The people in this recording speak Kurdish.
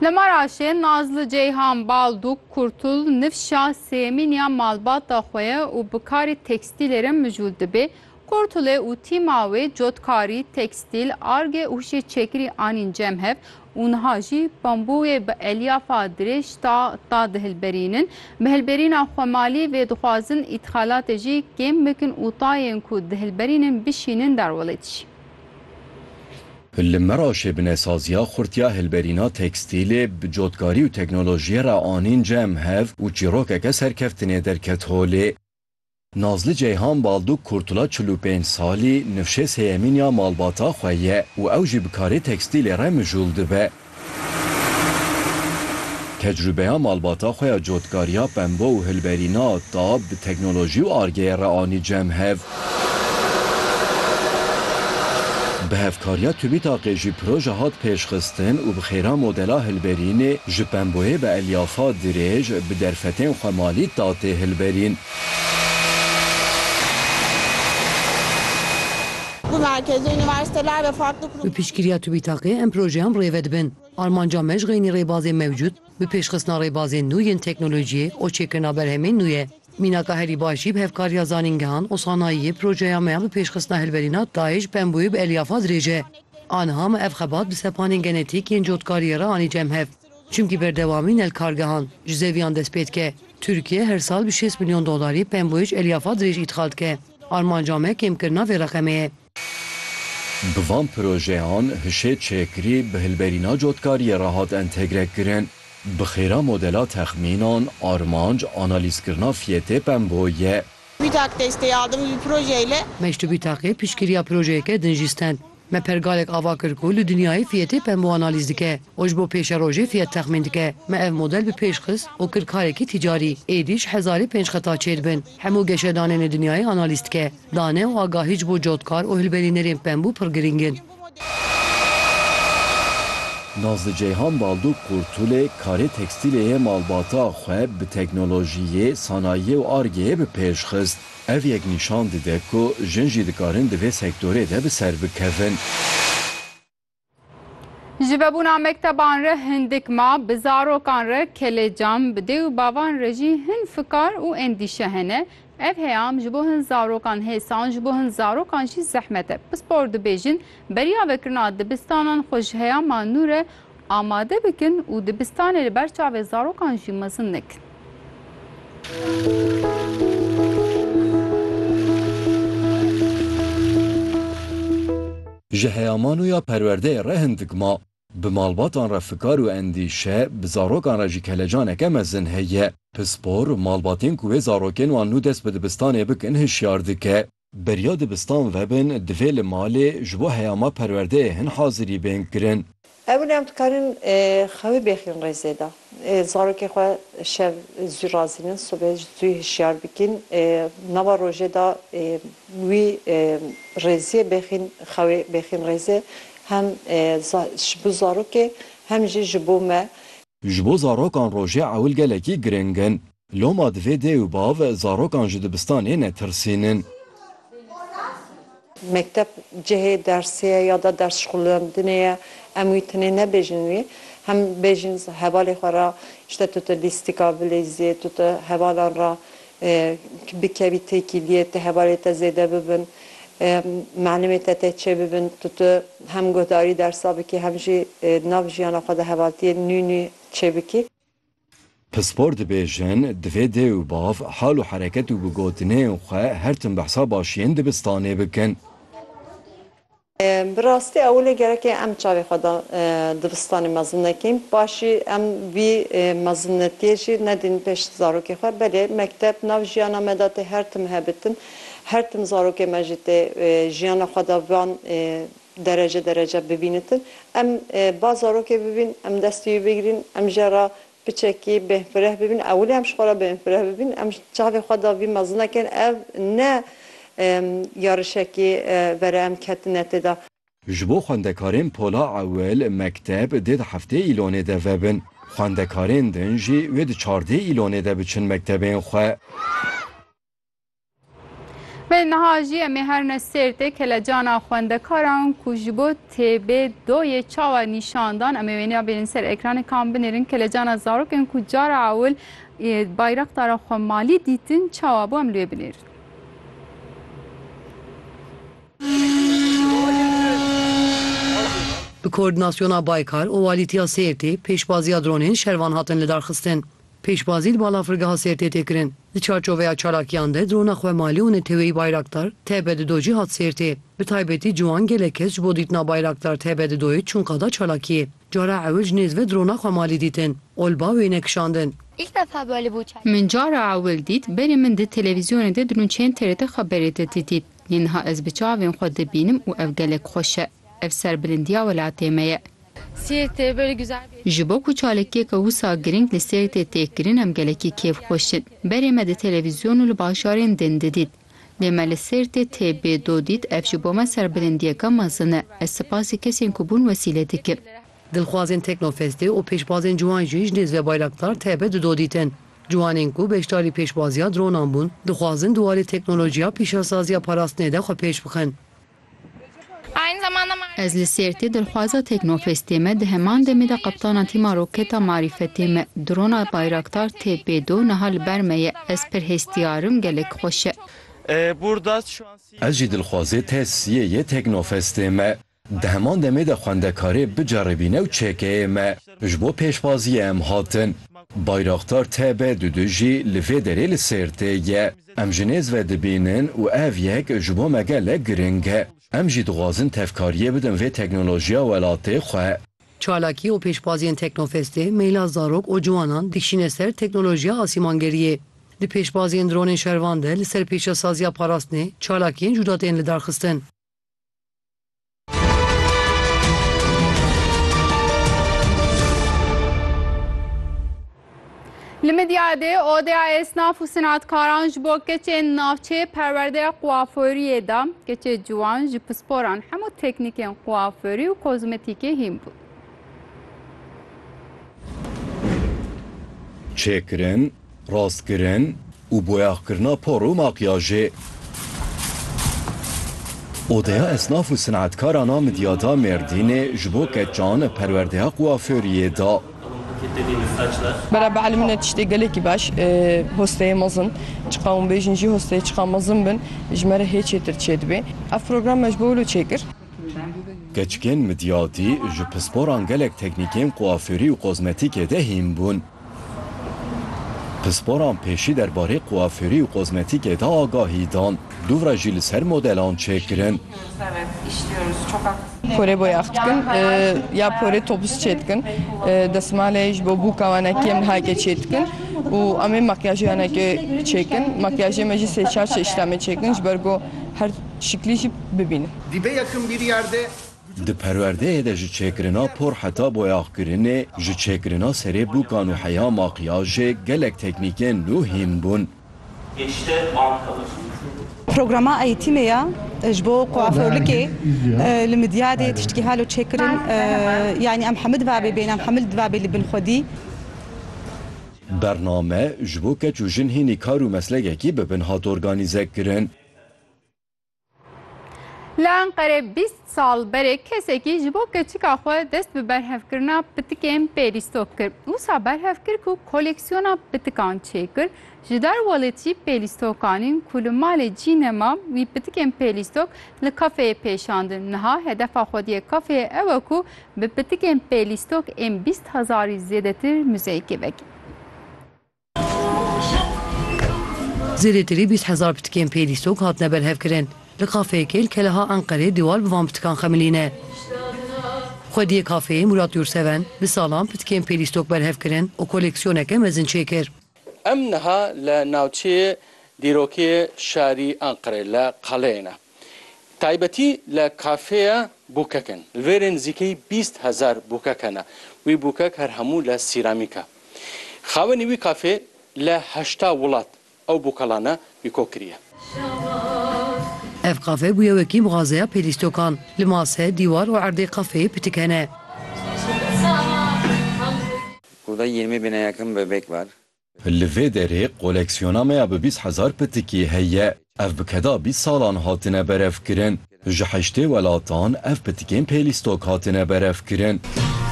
Li Maraşê Nazli Ceyhan Balduk Kurtul nifşa sêmîniya malbata xwe ye û bi karî tekstîlê re mijûl dibê. Kurtulê û tîma wê cotkarî, tekstîl, arge û hişê çekirî anîn cem hev û niha jî bambûyê bi elyafa dirêj ta ta dihilberînin. Bi hilberîna xwemalî vê dixwazin îtxalatê jî kêm bikin û tayên ku dihilberînin bişînin derwelê dijî. Li Meraşê binesaziya Xurtiya Hilberîna Tekstîlê bi cotkarî û teknolojiyê re anîn cem hev û çîrokeke serkeftinê derket holê. Nazli Ceyhan Balduk Kurtula çil û pênc salî nifşê sêyemîn ya malbata xwe ye û ew jî bi karê tekstîlê re mijûl dibe. Tecrûbeya malbata xwe ya cotkariya pembo û hilberîna tab bi teknolojî û argeyê re anî cem hev. Bi hevkariya TÜBİTAK'ê jî proje hat pêşxistin û bi xêra modela hilberînê ji pemboyê bi elyafa dirêj bi derfetên xwemalî da tê hilberîn. Bi piştgiriya TÜBİTAK'ê em projeyan rêve dibin. Armanca me ji xeynî rêbazên mewcûd bi pêşxistina rêbazên nû yên teknolojiyê û çêkirina berhemên nû ye. Mînaka herî baş jî bi hevkariya zanîngehan û sanayiyê projeya me ya bi pêşxistina hilberîna DAIŞ Bembuê bi elyafadrêj e. Aniha me ev xebat bi sepanên genetîk yên cotkariyê re anî cem hev. Çimkî berdewamî nel kargehan ji zeviyan dest pê dike. Tirkiye her sal bi şêst milyon dolarî pemboyêj elyafa dirêj îdxal dike. Armanca me kêmkirina vê reqemê ye. Bi van projeyan hişê çêkirî bi hilberîna cotkariyê re hat entegre kirin. Bi xêra modela texmînan, armanc, analîzkirina fiyetê pemboyî ye. Bîtak destê adim vî projeyle. Meştubî Taqê piştgiriya projeyeke din jî stend. Me pergalek ava kir ku li dinyayê fiyetê pembo analîz dike û ji bo pêşerojê fiyet texmîn dike. Me ev model bi pêş xist û kir karekî tîcarî. Êdî ji hezarê pênc xeta çêr bin. Hemû geşedanên li dinyayê analîz dike. Dane û agahî ji bo cotkar û hilberînerên pembû pir girîng in. Nazlı Ceyhan Balduk Kurtulê karê tekstîlê yê malbata xwe bi teknolojiyê, sanayiyê û Ar-Gê yê bi pêş xist. Ev yek nîşan dide ku jin jî dikarin di vê sektorê de bi ser bikevin. Ji vebûna mekteban re hindik ma, bi zarokan re kelecan, bi dê û bavan re jî hin fikar û endîşe hene. Ev heyam ji bo hin zarokan hêsan, ji bo hin zarokan jî zehmet e. Pispor dibêjin, beriya vekirina dibistanan xwe ji heyama nû re Amade bikin û dibistanê li ber çavê zarokan jî mezin nekin. Ji heyamano ya perwerdeyê re hindik ma, bi malbatan re fikar û endîşe, bi zarokan re jî kelecaneke mezin heye. Pispor, malbatên ku wê zarokên wan nû dest bi dibistanê bikin hişyar dike. Beriya dibistan vebin divê li malê ji bo heyama perwerdeyê hin hazirî bên kirin. Ew ne ew dikarin xewê bêxîn rêzê de zarokê xwe şev zû razînin sibê zû hişyar bikîn nava rojê de wî rêziyê bêxîn xewê bêxîn rêzê hem ji bo zarokê hem jî ji bo me. Ji bo zarokan rojê ewil gelekî giring in. Loma divê dê û bav zarokan ji dibistanê netirsînin. Mekteb cihê dersê ye ya da ders şixulendinê ye. Em wî tenê nebêjin wî. Hem bêjin hevalê xwe re îşte tu ti lîstika bileyzê, tu ti hevalan re bikevî têkiliyê, ti hevalê te zêde bibin, milimê te tê çêbibin, tu ti hem guhdarî dersa bikî hem jî di nav jiyana xwe de hevaltiyên nû nû çêbikî. Pispor dibêjin, divê dê û bav hal û hereket û bigotineyên xwe her tim bi hesaba şiyên dibistanê bikin. Bi rastî ewilê gereke em çavê xwe da dibistanê mezin nekin. Paşî em vî mezinnetiyê jî nedîn pêş zarokê xwe. Belê mekteb nav jiyana me da tê her tim hebitin. Her tim zarokê me jî tê jiyana xwe da van derece derece bibînitin. Em ba zarokê bibîn, em destî wî bigirîn, em jê re piçekî bêhfireh bibîn. Ewilî em ji xwe re bêhfireh bibîn, em çavê xwe de vî mezinekê in, ev ne yarişekî vera em ketine tê de. Ji bo xwendekarên pola ewil, mekteb dê di heftê îlonê de vebin. Xwendekarên din jî wê di çardê îlonê de biçin mektebên xwe. Vê niha jî em ê her ne sêrtê kelecana xwendekaran ku ji bo TB2yê çawa nîşan dan em ê wêneya bêrin ser ekranê kam binêrin kelecana zarokên ku cara ewil bayraktara xwe malî dîtin çawa bû em li wê binêrin. Bi koordinasyona Baykar û Walîtiya Sêrtê pêşbaziya dronên şervan hatin lidarxistin. Pêşbazî li Balafirgeha Sêrtê tê kirin. Di çarçoveya çalakiyan de drona xwe malê û neteweyî Bayraktar TB di do jî hat Sêrtê. Bi taybetî ciwan gelek kes ji bo dîtina Bayraktar TB di doyê çûn qada çalakiyê. Cara ewil ji nêz ve drona xwe malê dîtin. Olba wê nekişandin. Min cara ewil dît, berê min di televîzyonê de dirûnçeyên TRT Xeberê de didît. Lê niha ez bi çavên xwe dibînim û ev gelek xweş e. Ev serbilindiya welatê me ye. Ji bo ku çalakiyeke wisa girîng li Sêrtê tê kirin em gelekî kêf xweş in. Berê me di televîzyon û li bajarên din didît. Lê me li Sêrtê tê bê do dît ev ji bo me serbilindiyeke mezin e. Ez sipasî kesên ku bûn wesîle dikim. Dilxwazên Teknofestê û pêşbazên ciwan jî ji Nêzve Bayraktar taybet di do dîtin. Ciwanên ku beşdarî pêşbaziya dronan bûn, dixwazin di warê teknolojiya pîşesaziya parastinê de xwe pêş bixin. Ez li Sêrtê dilxwaza Teknofestê me di heman demê de qeptana tîma roketa marîfetê me drona Bayraktar TB do niha li ber me ye ez pir hestiyar im gelek xweş e. Ez jî dilxwazê te siyê yê Teknofestê me di heman demê de xwendekarê biceribîne û çekeyê me ji bo pêşbaziyê em hatin Bayraktar TB du du jî li vê derê li Sêrtê ye. Em ji nêz ve dibînin û ev yek ji bo me gelek girîng e. Em jî dixwazin tevkariyê bidin vê teknolojiya welatê xwe. Çalakî û pêşbaziyên Teknofestê meyla zarok û ciwanan dikişîne ser teknolojiya asîmangeriyê. Di pêşbaziyên dronên şervan de li ser pêşesaziya parastinê çalakiyên cuda tên lidarxistin. Li Midyadê odeya esnaf û senatkaran ji bo keçên navçê perwerdeya kuaforiyê da. Keçê ciwan ji pisporan hemû teknîkên kuaforî û kozmetîkê hîn bû. Çêkirin, rastkirin û boyaxkirina por û makyajê. Odeya Esnaf û Sinetkaran a Midyada Mêrdînê ji bo keçan perwerdeya kuaföriyê da. Bera bi elmîne tiştê gelekî baş e hosteyê mezin. Çi qewim bêjin jî hosteyê çiqas mezin bin ji me re hê çêtir çêdibê. Ev program me ji bo wilo çêkir. Keçikên midyadî ji pisporan gelek teknîkên kuaförî û kozmetîkê de hîn bûn. Pisporan pêşî derbarê kuafûrî û kozmetîkê de agahî dan, dûvre jî li ser modelan çêkirin. Porê boyax dikin ya porê topuz çêdikin. Desmalê ji bo bûka wenekî em niha yekê çêdikin û em ê makyajê wenekê çêkin. Makyajê me jî sê çar çeşit em ê çêkin ji ber ku her şiklî jî bibînin. Dîbe yekim bîrîyar de. Di perwerdeyê de ji çêkirina por heta boyaxkirinê, ji çêkirina serê bûkan û heya makyajê gelek teknîkên nû hîn bûn. Programa eîtîmê ya ji bo kuaförlikê li Midyadê tiştî halo çêkirin yanî em hemû dibabê bên, em hemû dibabê li bin xwedî. Bername ji bo keç û jin hînî kar û meslekekî bibin hat organîzekirin. Li Enqerê bîst sal berê kesekî ji bo keçika xwe dest bi berhevkirina pitikên pêlîstok kir. Wisa berhev kir ku koleksiyona pitikan çêkir, ji dar welê jî pêlîstokanîn ku li malê cî nema wî pitikên pêlîstok li kafeyê pêşandin. Niha hedefa xwediyê kafeyê ew e ku bi pitikên pêlîstok ên bîst hezarî zêdetir muzeyekê vekî. Zêdetirî bîst hezar pitikên pêdîsok hatine berhevkirin. Li kafeyekê li Keleha Enqerê dîwal bi van pitikan xemilîne. Xwediyê kafeyê Murat Yurseven bi salan pitikên pêdîstok berhev kirin û koleksiyoneke mezin çêkir. Em niha li navçeyê dîrokê şarî Enqerê li Qeleyê ne. Taybetî li kafeya Bûkek in. Li vêrê nizîkeyî bîst hezar bûkek hene. Wî bûkek her hemû li sîramîk e. Xawenî wî kafê li heşta wilat ew bûkelane wî kok kiriye. Ev kafe bûye wekî mixazeya pêlîstokan. Li mase, dîwar û erdê kafeyê pitik hene. Kuda yirmi bîne yekem bebek var. Li vê derê koleksiyona me ya bi bîst hezar pitikî heye. Ev bi keda bîst salan hatine berevkirin. Ji heştê welatan ev pitikên pêlîstok hatine berevkirin.